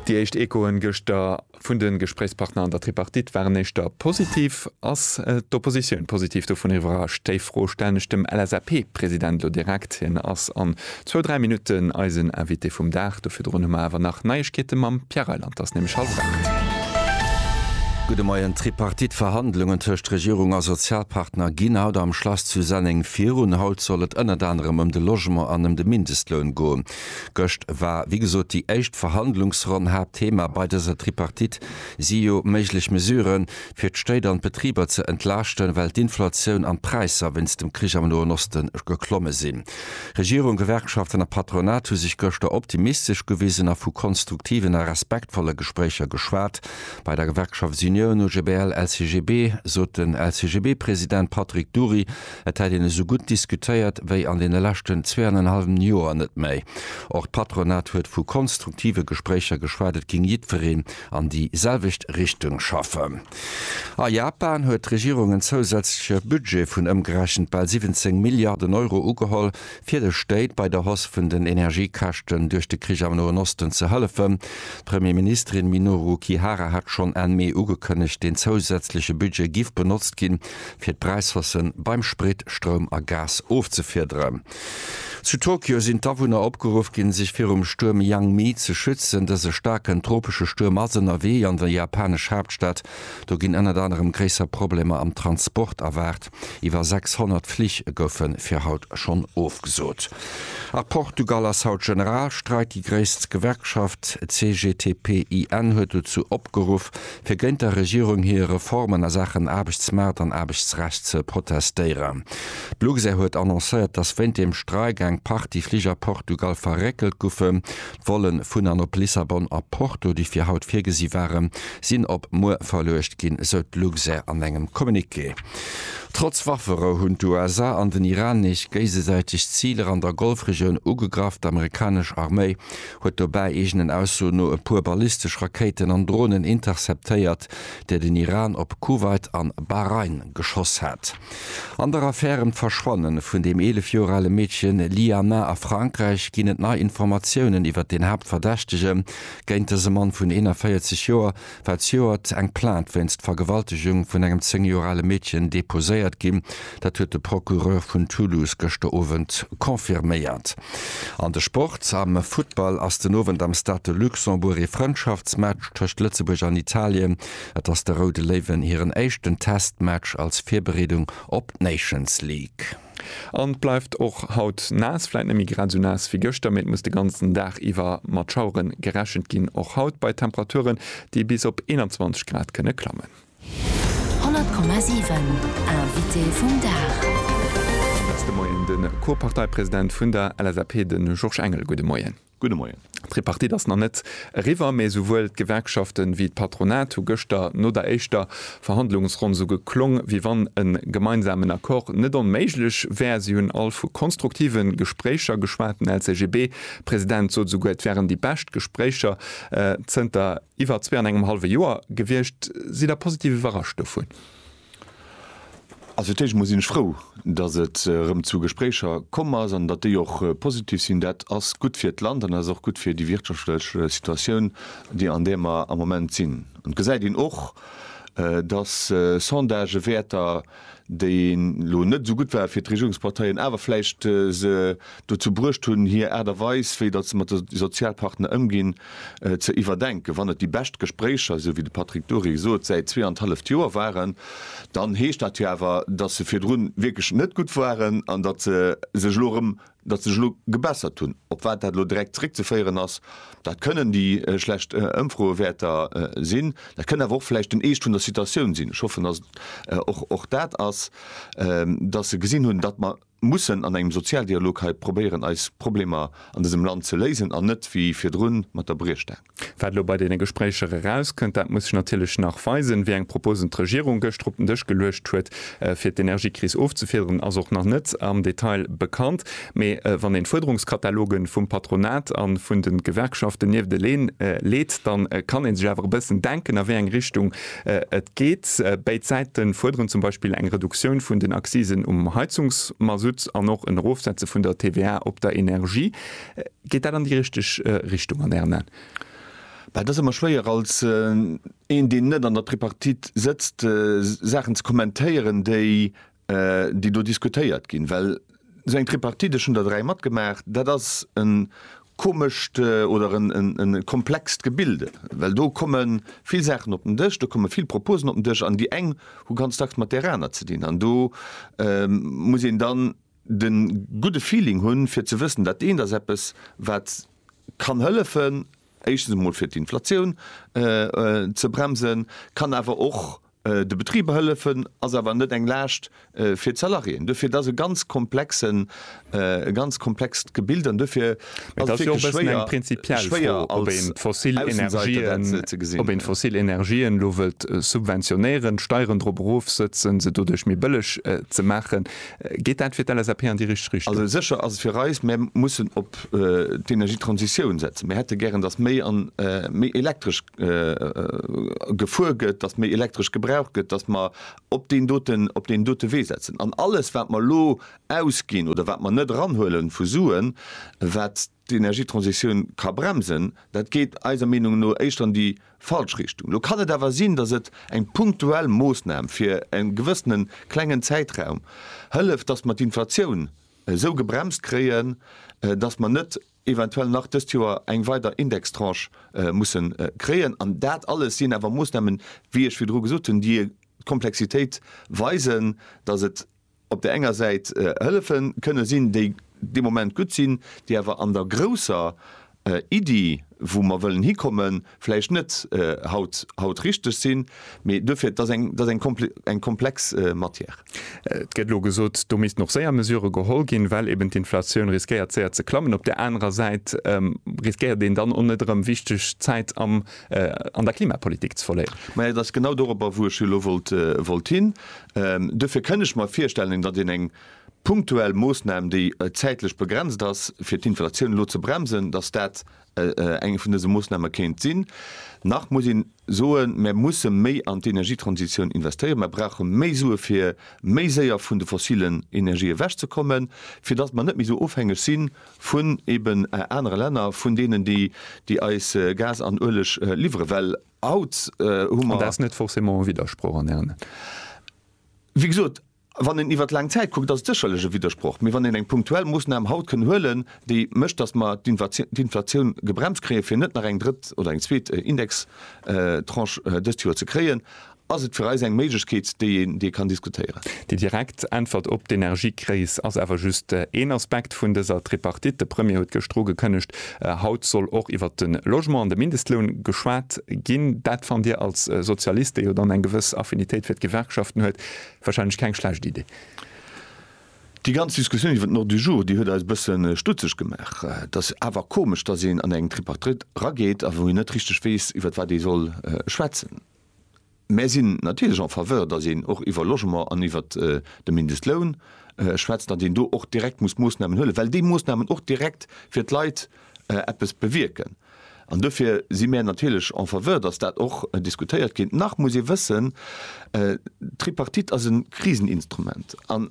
Déi éischt Echoen gëschter vun de Gespréichspartner an der Tripartite waren éischter positiv. Ass d'Oppositioun positiv dovun iwwerrascht? Déi Fro stellen ech dem LSAP-President elo direkt. Hien ass an zwou, dräi Minutten eisen Invité vum Dag. Do virdrun hu mer awer nach Neiegkeete mam Pierre Reyland. Ass nämlech hallef aacht. Gudde Moien. D'Tripartite-Verhandlungen tëscht Regierung a Sozialpartner ginn haut am Schlass zu Senneng virun. Haut soll et ënnert anerem ëm de Logement an ëm de Mindestloun goen. Gëscht war wéi gesot déi éischt Verhandlungsronn. Haaptthema bei dëser Tripartite si jo méiglech Mesuren, fir d'Stéit an d'Betriber ze entlaaschten, well d'Inflatioun an d'Präisser wéinst dem Krich am Noen Osten geklomme sinn. Regierung, Gewerkschaften a Patronat hu sech gëschter optimistesch gewisen a vu konstruktiven a respektvolle Gespréicher geschwat. Bei der Gewerkschaftsunioun OGBL-LCGB sot den LCGB-President Patrick Dury, Et hätt een esou gutt diskutéiert wéi an deene leschten zwee an en hallwem Joer net méi. Och d'Patronat huet vu konstruktive Gespréicher geschwat, et géing jiddwereen an déi selwecht Richtung schaffen. A Japan huet d'Regierung en zousätzleche Budget vun ëmgerechent bal 17 Milliarden Euro ugeholl, fir de Stéit bei der Hausse vun den Energiekäschten duerch de Krich am Noen Osten ze hëllefen. D'Premierministerin Minoru Kihara hat schonn Enn Mee ugekënnegt, deen zousätzleche Budget giff benotzt ginn, fir d'Präishausse beim Sprit, Stroum a Gas ofzefiederen. Zu Tokio sinn d'Awunner opgeruff ginn, sech virum Stuerm Yangmi ze schützen. Dëse staarken tropesche Stuerm ass ënnerwee an der japanesch Haaptstad. Do ginn ënnert anerem gréisser Problemer am Transport erwaart. Iwwer 600 Flich goufe fir haut schonn ofgesot. A Portugal ass haut Generalstreik. Déi gréisst Gewerkschaft CGTP-IN huet dozou opgeruff, fir géint der Regierung hir Reformen a Saachen Aarbechtsmaart an Aarbechtsrecht ze protestéieren. D'Luxair huet annoncéiert, dass wéint dem Streik eng Partie Fliger a Portugal verréckelt goufen. D'Volle vun an op Lissabon a Porto, déi fir haut virgesi waren, sinn op muer verluecht ginn, sou d'Luxair an engem Communiqué. Trotz Wafferou hunn d'USA an den Iran nees géisesäiteg Ziler an der Golfregioun ugegraff. D'Amerikanesch Arméi huet dobäi eegenen Aussoen no e puer ballistesch Rakéiten an Dronen interceptéiert, där den Iran op Kuwait an Bahrain geschoss hat. An der Affär ëm d'Verschwanne vun dem 11 Joer ale Meedche Liana a Frankräich ginn et nei Informatiounen iwwert den Haaptverdächtege géint dëse Mann vun 41 Joer, war zejoert eng Plainte wéinst Vergewaltegung vun engem 10 Joer ale Meedchen deposéiert ginn. Dat huet de Procureur vun Toulouse gëschter Owend confirméiert. An de Sport, Am Futtball ass den Owend am Stade de Luxembourg ee Frëndschaftsmatch tëscht Lëtzebuerg an Italien. Et ass de Roude Léiwen hiren éischten Testmatch als Virbereedung op d'Nations League. An et bleift och haut naass, vläit net méi grad esou naass wéi gëschter, mee et muss de ganzen Dag iwwer mat Schauere gerechent ginn, och haut bei Temperaturen, déi bis op 21 Grad kënne klammen. 100,7 Invité vum Dag. Ass de Moien de Co-Parteipresident vun der LSAP, de Georges Engel. Gudde Moien. Gudde Moien. D'Tripartite ass nach net eriwwer, mä souwuel d'Gewerkschaften wéi d'Patronat hu gëschter no der éischter Verhandlungsronn sou geklong, wéi wann e gemeinsamen Accord net onméiglech wär. Si hunn all vu konstruktive Gespréicher geschwat. Den LCGB-President sot esouguer, et wären déi bescht Gespréicher zënter iwwer zwee an engem hallwe Joer gewiescht. Sidd Der positiv iwwerrascht dovun? Also fir d'éischt emol sinn ech frou, datt et erëm zu Gespréicher komm ass an datt déi och positiv sinn. Dat ass gutt fir d'Land an dat ass och gutt fir déi wirtschaftlech Situatioun, déi an där mer am Moment sinn. An et gesäit een och, datt Sondagewäerter, déi elo net esou gutt ware fir d'Regierungsparteien, awer vläicht se dozou bruecht hunn, hir Aart a Weis, wéi datt se mat de Sozialpartner ëmginn, ze iwwerdenken. Wann et déi bescht Gespréicher, esou wéi de Patrick Dury sot, säit zwee an d'halleft Joer waren, dann heescht dat jo awer, datt se virdrun wierklech net gutt waren an datt se sech elo erëm, datt se sech elo gebessert hunn. Op wat dat elo direkt zeréckzeféieren ass, dat kënnen déi schlecht Ëmfroewäerter sinn, dat kënnt awer och vläicht den Eescht vun der Situatioun sinn. Ech hoffen, datt et och dat ass, datt se gesinn hunn, datt mer, mussen an engem Sozialdialog hei probéieren eis Problemer an dësem Land ze léisen an net wéi virdrun mat der Briechstaang. Wat elo bei deene Gespréicher erauskënnt, dat muss sech natierlech nach weisen. Wéi eng Proposen d'Regierung gëschter op den Dësch geluecht huet fir d'Energiekris ofzefederen ass och nach net am Detail bekannt. Mee wann een d'Fuerderungskataloge vum Patronat a vun de Gewerkschaften niefteleen leet, da kann ee sech awer e bëssen denken a wéi eng Richtung Et geet, Béid Säite fuerderen zum Beispill eng Reduktioun vun den Accisen um Heizungsmasutt an och en Erofsetze vun der TVA op der Energie. Geet dat an déi richteg Richtung an Ären Aen? Dat ass ëmmer schwéier als een, deen net an der Tripartite sëtzt, Saachen ze kommentéieren, déi déi do diskutéiert ginn, well esou eng Tripartite, ech hunn der dräi matgemaach, dat ass e komescht oder e komplext Gebilde, well do komme vill Saachen op den Dësch, do komme vill Proposen op den Dësch an déi eng hu ganz dacks mat där aner ze dinn. An do muss een dann de gudde Feeling hunn, fir ze wëssen, dat eent ass eppes, wat kann hëllefen, éischtens emol fir d'Inflatioun ze bremsen, kann awer och De Betriber hëllefen ass awer net eng Laascht fir d'Salariéen. Duerfir, et ass e ganz komplexen, e ganz komplext Gebild an duerfir ass et wierklech schwéier, schwéier als Aussenseiter dat ze gesinn. Ob een d'fossil Energien elo wëllt subventionéieren, d'Steieren drop erofsëtzen, se doduerch méi bëlleg ze maachen, geet dat fir d'LSAP an déi richteg Richtung? Also sécher ass et fir eis, mir mussen op d'Energietransitioun setzen. Mir hätte gären, datt méi an méi Elektresch gefuer gëtt, dass méi elektresch gebraucht gëtt, dass mer op deen doten, op deen dote Wee setzen. An alles wat mer elo ausginn oder wat mer net eranhuele vu Suen, wat d'Energietransitioun ka bremsen, dat geet eiser Meenung no éischter an déi falsch Richtung. Lo kann et awer sinn, dass et eng punktuell Moossnam fir e gewëssene klengen Zäitraum hëlleft, dass mer d'Inflatioun esou gebremst kréien, dass mer net, eventuell nach dëst Joer eng weider Indextranche mussen kréien. An dat alles sinn awer Moosnamen, wéi ech virdru gesot hunn, déi d'Komplexitéit weisen, dass et op där enger Säit Hëllefe kënne sinn, déi de Moment gutt sinn, déi awer an der grousser Iddi, wou mer wëllen hikommen, vläicht net haut haut richteg sinn, mee duerfir, et ass eng, et ass eng kompl eng komplex Matière. Et gëtt elo gesot, do missten och séier Mesurë geholl ginn, well eben d'Inflatioun riskéiert séier ze klammen. Op där anerer Säit riskéiert een dann och net erëm wichteg Zäit am an der Klimapolitik ze verléieren. Majo, et ass genau doropper, wou ech jo elo wollt wollt hin. Duerfir kënn ech mer virstellen, datt een eng punktuell Moosnam, déi zäitlech begrenzt ass, fir d'Inflatioun elo ze bremsen, datt dat eng vun dëse Moosname kéint sinn. Nach muss een soen, Mir musse méi an d'Energietransitioun investéieren. Mir brauche méi Sue fir méi séier vun de fossilen Energië ewech ze kommen, fir datt mer net méi esou ofhängeg si vun eben anere Länner, vun deenen, déi eis Gas an Ueleg liwweren. Well haut hu mer. An dat ass net forcément e Widdersproch an Ären Aen? Wéi gesot. Wann een iwwert laang Zäit kuckt, ass et sécherlech e Widdersproch. Mee wann een eng punktuell Moossnam haut kënn huelen, déi mécht, datt mer d'Inflatioun gebremst kréien, fir net nach eng drëtt oder eng zweet Indextranche dëst Joer ze kréien, ass et fir eis eng Méiglechkeet, déi een déi kann diskutéieren. Déi direkt Äntwert op d'Energiekris ass awer just een Aspekt vun dëser Tripartite. De Premier huet gëscht dru gekënnegt, haut soll och iwwert de Logement an de Mindestloun geschwat ginn. Dat fannt Dir als Sozialist, dee jo dann eng gewëss Affinitéit fir d'Gewerkschaften huet, Wahrscheinlech keng schlecht Idee. Déi ganz Diskussioun iwwer den Ordre du jour, déi huet eis e bësse stutzeg gemaach. Et ass awer komesch, datt een an eng Tripartite erageet a wou een net richteg weess, iwwer wat ee soll schwätzen. Mär sinn natierlech en faveur, datt een och iwwer Logement an iwwer de Mindestloun schwätzt, datt een do och direkt muss Moossnamen huelen, well déi Moossnamen och direkt fir d'Leit eppes bewierken. An dofir si mär natierlech en faveur, dass dat och diskutéiert gétt. Nach muss ee wëssen, d'Tripartite ass e Kriseninstrument an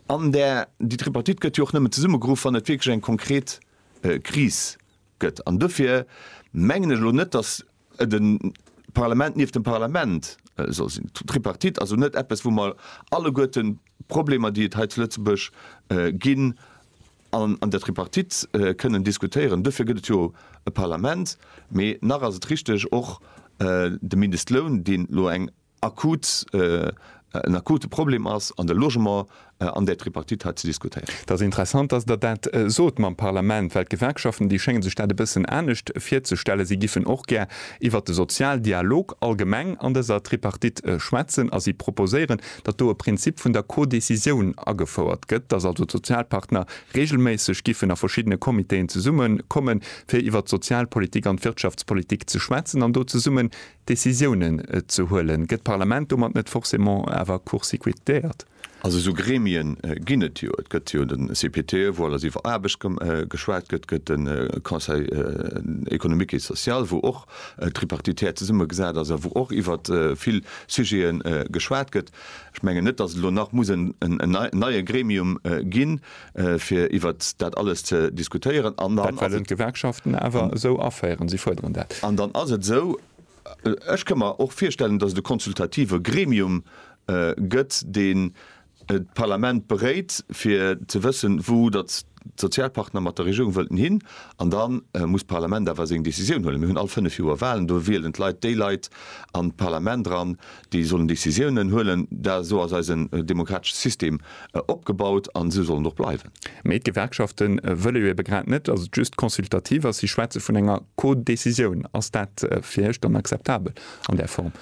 an där, déi Tripartite gëtt jo och nëmmen zesummegeruff, wann et wierklech eng konkret Kris gëtt. An dofir mengen ech elo net, dass De Parlament nieft dem Parlament soll sinn. D'Tripartite ass esou net eppes, wou mer alleguerte Problemer, déi et hei zu Lëtzebuerg ginn, an der Tripartite kënnen diskutéieren. Dofir gëtt et jo e Parlament. Mee nach ass et richteg, och de Mindestloun, deen elo eng akut, en akute Problem ass an de Logement an där Tripartite hei ze diskutéieren. Et ass interessant, dass Der dat sot mam Parlament, well d'Gewerkschaften, déi schénge sech dat e bëssen anescht virzestellen. Si giffen och gär iwwert de Sozialdialog allgemeng an dëser Tripartite schwätzen a si proposéieren, datt do e Prinzip vun der Codécisioun agefouert gëtt, dass also d'Sozialpartner reegelméisseg giffen a verschiddene Comitéen zesummekommen, fir iwwert d'Sozialpolitik an d'Wirtschaftspolitik ze schwätzen an do zesummen Decisiounen ze huelen. Gëtt d'Parlament domat net forcément awer court-cicuitéiert? Also esou Gremien ginn et jo. Et gëtt jo de CPTE, wou alles iwwer Aarbecht geschwat gëtt, gëtt de Conseil économique et social, wou och tripartitär zesummegesat ass a wou och iwwer vill Sujete geschwat gëtt. Ech mengen net, datt et elo nach muss en neie Gremium ginn, fir iwwer dat alles ze diskutéieren. An dann. Dat wellen d'Gewerkschaften awer esou aféieren. Si fuerderen dat. An dann ass et esou, ech ka mer och virstellen, datt et e konsultative Gremium gëtt, deen d'Parlament beréit, fir ze wëssen, wou datt d'Sozialpartner mat der Regierung wëllten hin. An da muss d'Parlament awer seng Decisioun huelen. Mir hunn all fënnef Joer Walen. Do wielen d'Leit déi Leit an d'Parlament eran, Déi sollen Décisiounen huelen. Da esou ass eisen demokratesche System opgebaut an esou soll en och bleiwen. Mee d'Gewerkschafte wëlle jo ebe grad net, datt et just consultativ ass. Si schwätze vun enger Codécisioun. Ass dat fir Iech dann akzeptabel an där Form?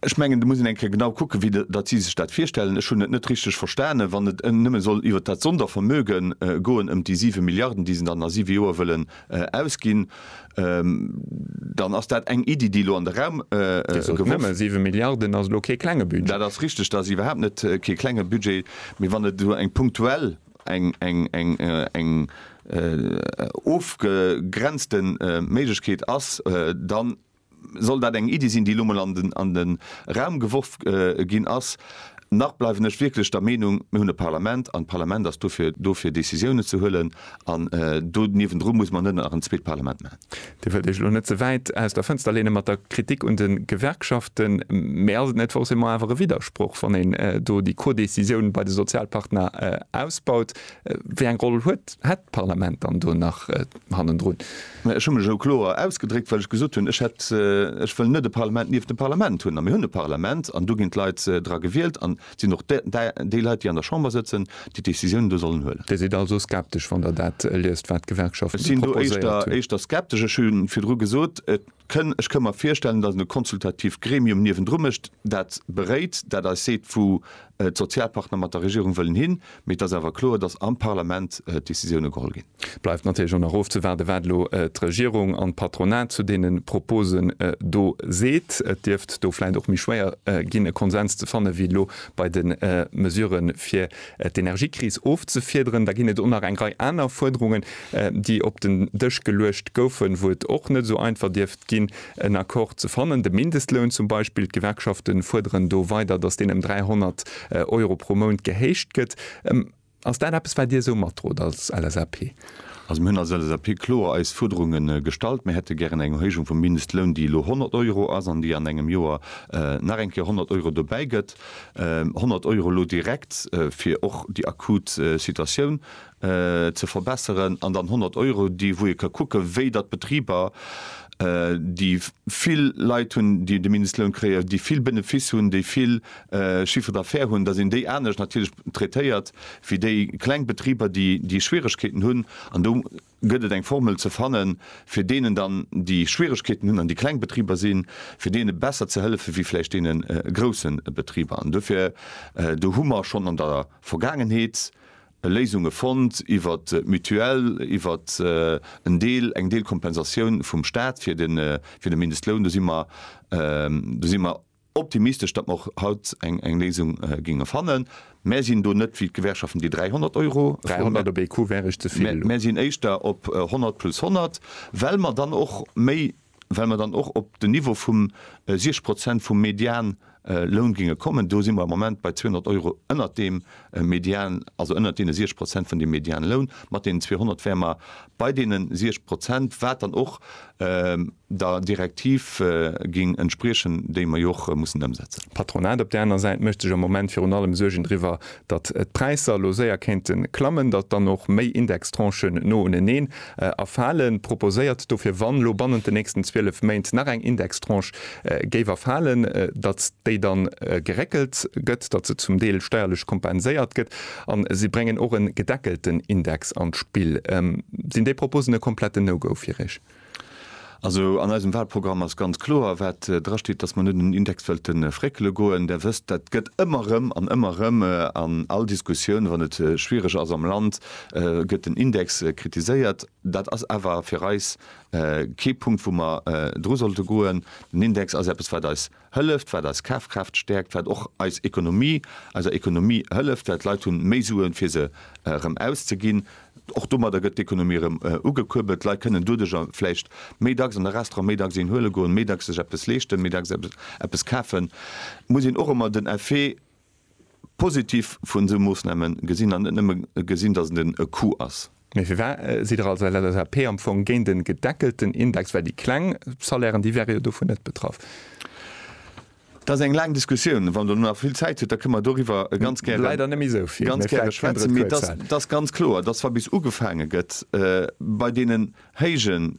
Ech mengen, do muss een eng Kéier genau kucken, wéi datt si sech dat virstellen. Ech hunn et net richteg verstanen, wann et nëmme soll iwwert dat Sondervermögen goen, ëm déi siwe Milliarden, déi se dann a siwe Joer wëllen Ausginn, dann ass dat eng Iddi, déi elo an de Raum geworf gëtt. Nëmme siwe Milliarden ass elo kee klenge Budget. Dat ass richteg, dat ass iwwerhaapt net kee klenge Budget. Mee wann et esou eng punktuell, eng ofgegrenzte Méiglechkeet ass, dann Soll dat eng Iddi sinn, déi elo mol an de Raum geworf ginn ass? Nach bleiwen ech wierklech der Meenung, mir hunn e Parlament an d'Parlament ass dofir do fir Décisiounen ze huelen an do niewendru muss mer net nach en zweet Parlament maachen. Dir wëllt Iech elo net ze wäit aus der Fënster leene mat der Kritik un de Gewerkschaften, mee ass et net forcément awer e Widdersproch, wann een do déi Codécisioun bei de Sozialpartner ausbaut? Wéi eng Roll huet, hätt d'Parlament dann do nach hannendrun? Mä ech hu mech elo kloer ausgedréckt, well ech gesot hunn, ech hätt, ech wëll net e Parlament nieft dem Parlament hunn. A mir hunn e Parlament an do ginn d'Leit dra gewielt an et sinn och déi Leit, déi an der Chamber sëtzen, déi d'Décisiounen do sollen huelen. Dir sidd also skeptesch, wann Der dat liest, wat d'Gewerkschaften proposéiert hunn? Ech sinn do éischter skeptesch. Ech hu virdru gesot, ech ka mer virstellen, datt een e konsultativt Gremium niewendru mécht, dat beréit, dat eis seet, wou D'Sozialpartner mat der Regierung wëllen hin, mee et ass awer kloer, datt am Parlament d'Decisioune geholl ginn. Et bleift natierlech och nach ofzewaarden, wat elo d'Regierung an d'Patronat zu deene Proposen do seet. Et dierft do vläicht och méi schwéier ginn, e Konsens ze fanne wéi elo bei de Mesurë fir d'Energiekris ofzefiederen. Da ginn et och nach eng Rei aner Fuerderungen, déi op den Dësch geluecht goufen, wou et och net esou einfach dierft ginn, en Accord ze fannen. De Mindestloun zum Beispill, d'Gewerkschafte fuerderen do weider, datt deen ëm 300 Euro pro Mount gehéicht gëtt. Ass dat eppes, wat Dir esou matdrot als LSAP? Also mir hunn als LSAP kloer eis Fuerderunge gestallt. Mir hätte gären eng Erhéijung vum Mindestloun, déi elo 100 Euro ass an déi an engem Joer nach eng Kéier 100 Euro dobäi gëtt. 100 Euro elo direkt, fir och déi akut Situatioun ze verbesseren an dann 100 Euro déi wou ee ka kucke wéi datt d'Betriber déi vill Leit hunn déi de Mindestloun kréien, déi vill Benefice hunn, déi vill Chiffre d'affaires hunn, datt een déi anescht natierlech traitéiert wéi déi kleng Betriber déi Schwieregkeeten hunn an do gëtt et eng Formel ze fanne fir deenen dann déi Schwieregkeeten hunn an déi kleng Betriber sinn fir deene besser ze hëllefe wéi vläicht deene grousse Betriber an dofir do hu mer schonn an der Vergaangenheet Léisunge fonnt iwwert d'Mutuelle, iwwert en Deel, eng Deel Kompensatioun vum Staat fir de, fir de Mindestloun. Do si mer, do si mer optimistesch, datt mer och haut eng, eng Léisung géinge fannen. Mär sinn do net wéi d'Gewerkschaften, déi 300 Euro froen. 300 op ee Coup wär eis ze vill elo. Mär sinn éischter op 100 plus 100, well mer dann och méi well mer dann och op den Niveau vu siech Prozent vum Medianloun géinge kommen. Do si mer am Moment bei 200 Euro ënnert deem Median, also ënnert deene siech Prozent vun deem Medianloun. Mat deenen 200 wäre mer bei deene siech Prozent, wat dann och der Direktiv géing entspriechen, déi mer jo och mussen ëmsetzen. D'Patronat op där aner Säit mécht sech am Moment virun allem Suergen driwwer, datt d'Präisser elo séier kéinte klammen, datt dann och méi Indextranchen no uneneen erfalen, proposéiert dofir, wann elo bannent den nächsten 12 Méint nach eng Indextranche géif erfalen, datt déi da geréckelt gëtt, datt se zum Deel steierlech kompenséiert gëtt. A si bréngen och e gedeckelten Index an d'Spill. Sinn déi Proposen e kompletten No-Go fir Iech? Also an eisem Wahlprogramm ass ganz kloer, wat drasteet, dass mer net un den Index wëlte fréckele goen. Der wësst, dat gëtt ëmmer erëm an ëmmer erëm an all Diskussioun, wann et schwierig ass am Land, gëtt den Index kritiséiert. Dat ass awer fir eis kee Punkt, wou mer dru sollte goen. Den Index ass eppes, wat eis Hëlleft, wat eis Kafkraaft stäerkt, wat och eis Ekonomie, eiser Ekonomie hëlleft, well d'Leit hunn méi Suen, fir se erëm auszeginn. Och domadder gëtt d'Ekonomie erëm ugekuerbelt. D'Leit kënnen doduercher vläicht méi dacks an de Restaurant, méi dacks een huele goen, méi dacks sech eppes leeschten, méi dacks eppes kafen. Et muss een och ëmmer den Effet Positiv vun esou Moossname gesinn an net nëmme gesinn, datt et en Coût ass. Mee firwat sidd Der als LSAP am Fong géint en gedeckelten Index, well déi kleng Salairen, déi wäre jo dovun net betraff? Dat ass eng laang Diskussioun. Wann Der elo nach vill Zäit hutt, da kënne mer doriwwer ganz gäre, ganz gäre schwätzen. Mee et ass ganz kloer, datt wa bis ugefaange gëtt bei deenen héijen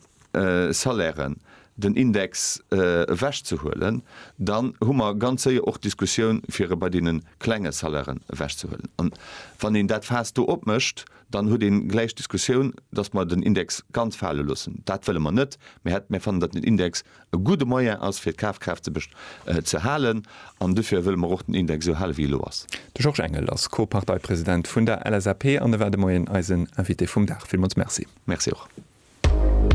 Salairen den Index ewech ze huelen, dann hu mer ganz séier och d'Diskussioun fir e bei deene klenge Salairen ewech ze huelen. An wann een dat Faass do opmécht, dann huet ee gläich d'Diskussioun, datt mer den Index ganz fale loossen. Dat wëlle mer net. Mir fannen, datt den Index e gudde Moyen ass fir d'Kafkraaft ze halen an dofir wëlle mer och den Index esou hale wéi elo ass. De Georges Engel ass Co-Parteipresident vun der LSAP an e war de Moien eisen Invité vum Dag. Villmools Merci. Merci och.